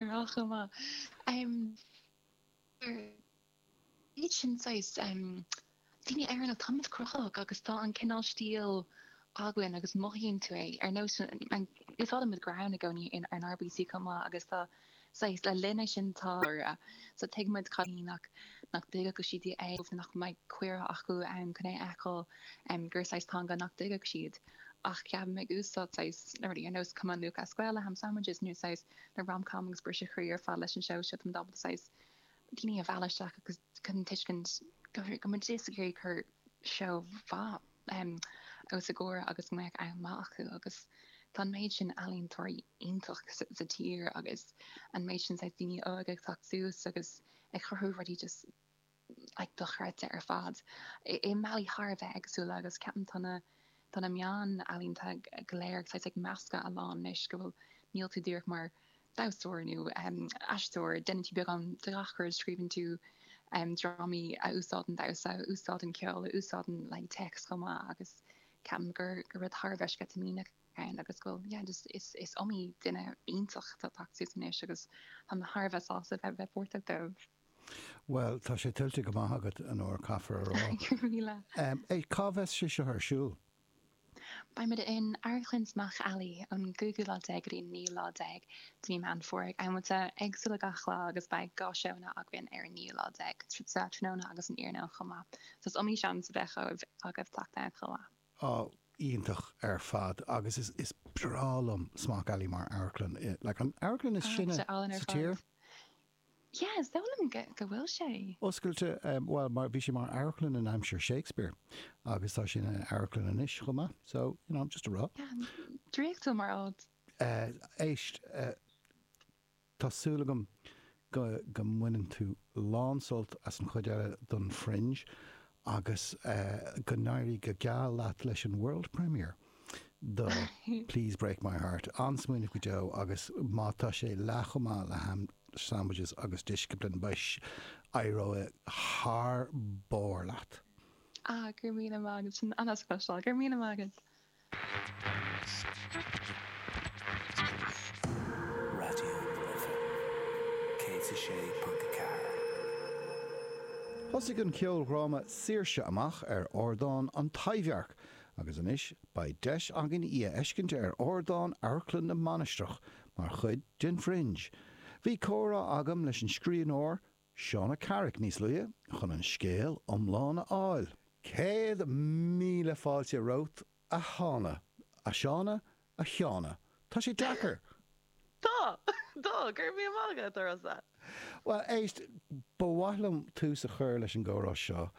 Rogha chomh maith. Bhíodar iad sin saghas daoine in Éirinn atá an-oilte cruthaitheach agus tá an cineál stíl againn agus mothaíonn tú é. Ar nós úsáidimid greann i gcónaí in NAF chomh maith agus tá saghas linne sin tá so tuigimid ceap nach nach dtuigfeadh siad é nó nach mbeadh cuireadh acu ann chun é a fheiceáil gur saghas teanga nach dtuigfeadh siad ach cheap mé ag úsáid saghas na rudaí ar nós Cumann Lúthchleas Gael le ham sandwiches nó saghas le rom-com agus briseadh chroí ar fad leis an seó seo, tá muid ábalta saghas daoine a mhealladh isteach agus chun an tuiscint go go muid díreach ag iarraidh cur seó mhaith em os a gcomhair agus go mbeadh am maith acu agus tá an méid sin ealaíontóirí iontach sa sa tír agus an méid sin saghas daoine óga ag teacht suas agus ag cruthú rudaí just dochreidte ar fad. I mbealaí thar a bheith éagsúla agus ceapaim tá na tá na meáin ealaíonta go léir ag tig ag meascadh a lán anois go bhfuil níl tú díreach mar damhsóir nó aisteoir. Déanann tú beagán de gach rud, scríobhann tú drámaí a úsáideann damhsa, a úsáideann ceol, a úsáideann like text chomh maith agus ceapaim gur gur rud thar a bheith sceitimíneach ann agus go bhfuil yeah just is is iomaí duine iontach atá ag teacht suas anois agus tá mé thar a bheith sásta bheith bheith páirteach díobh. Bhuel, tá sé tuillte go maith agat, Anoir, caithfear a rá. Go raibh míle. É, cá bheas sé seo ar siúl? Beimid in Amharclann Smock Alley ón gcúigiú lá déag go dtí an naoú lá déag de mhí Meán Fómhair ag amanta éagsúla gach lá agus beidh dhá seóanna againn ar an naoú lá déag, sa tráthnóna agus san iarnóin chomh maith. So is iomaí seans a bheidh agaibh teacht ann chomh maith. Á, iontach ar fad agus is breá liom Smock Alley mar amharclann. Like, an amharclann is sine sa tír. Tá sé álainn ar fad. Yeah, is dóigh liom go bhfuil sé. Oscailte, bhuel, mar, bhí sé mar amharclann in aimsir Shakespeare agus tá sé ina amharclann anois chomh maith, so, you know, just a rá. Yeah, draíochtúil mar áit. Éist, tá súil agam go mbaineann tú lán sult as an chuid eile den Fringe agus go n-éirí go geal leat leis an World Premiere. de Please Break My Heart an-smaoineamh go deo agus má tá sé leath chomh maith le Ham Sandwiches agus Discipline, mhuis, éireoidh thar barr leat. Ah, go raibh míle maith agat, sin an-deas a chloisteáil, gur míle maith agat! Raidió na Life 106.4. Thosaigh an ceoldhráma Saoirse? amach ar ardán An Taibhdhearc Agus anois beidh deis againn í a fheiscint ar ardán Amharclann na Mainistreach mar chuid den Fringe. Bhí comhrá agam leis an scríbhneoir, Shauna Carrick, níos luaithe chun an scéal iomlán a fháil. Céad míle fáilte romhat, a Shauna. A Shauna, A Sheána, tá sé deacair! Tá! Tá! Cuir mí amach agat, a Rossa! Bhuel, éist, ba mhaith liom tús a chur leis an gcomhrá seo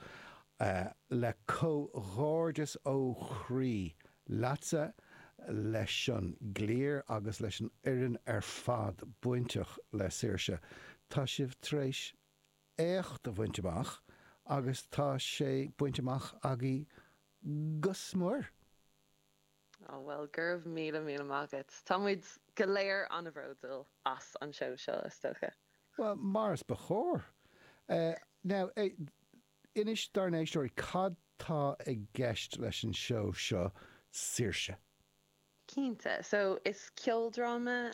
le comhghairdeas ó chroí leatsa, leis an gcliar agus leis an fhoireann ar fad bainteach le Saoirse. Tá sibh tar éis éacht a bhaint amach agus tá sé bainte amach agaibh go mór. Á, bhuel, go raibh míle míle maith agat. Tá muid go léir an-bhróduil as an seó seo, is dócha. Bhuel, mar is ba chóir. Now, inis dár n-éisteoirí cad tá i gceist leis an seó seo, Saoirse? Cinnte. So, is ceoldráma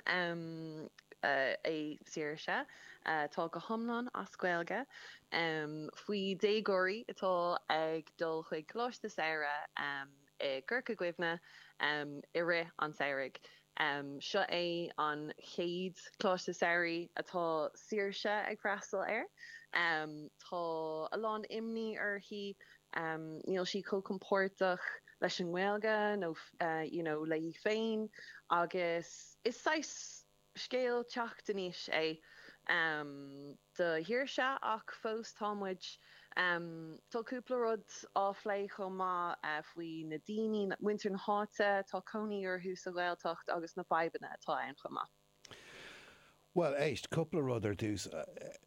é Saoirse, atá go hiomlán as Gaeilge, faoi déagóirí atá ag dul chuig coláiste samhraidh i gCorca Dhuibhne i rith an tsamhraidh. Seo é an chéad Choláiste Samhraidh atá Saoirse ag freastal air. Tá a lán imní uirthi, níl sí chomh compordach leis an nGaeilge nó you know léi féin agus is saghas. Scéal teacht in aois é do Shaoirse ach fós tá muid, tá cúpla rud á phlé chomh maith faoi na daoine, muintir na háite atá ina gcónaí sa Ghaeltacht agus na fadhbanna atá ann chomh maith. Bhuel éist, cúpla rud ar dtús.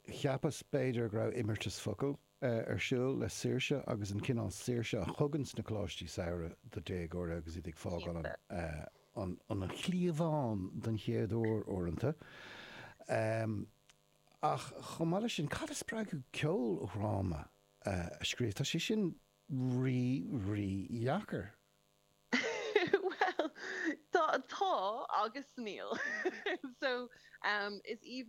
Cheapas b'fhéidir go raibh imeartas focal ar siúl le saoirse agus an cineál saoirse a thuganns na Coláistí Samhraidh do déagóirí agus iad ag fágáil an an chliabhán don chéad uair uaireanta. Ach chomh maith leis sin, cad a spreag thú ceoldhráma a scríobh? Tá sé sin rí, rí dheacair. Bhuel, tá agus níl. So, is aoibhinn.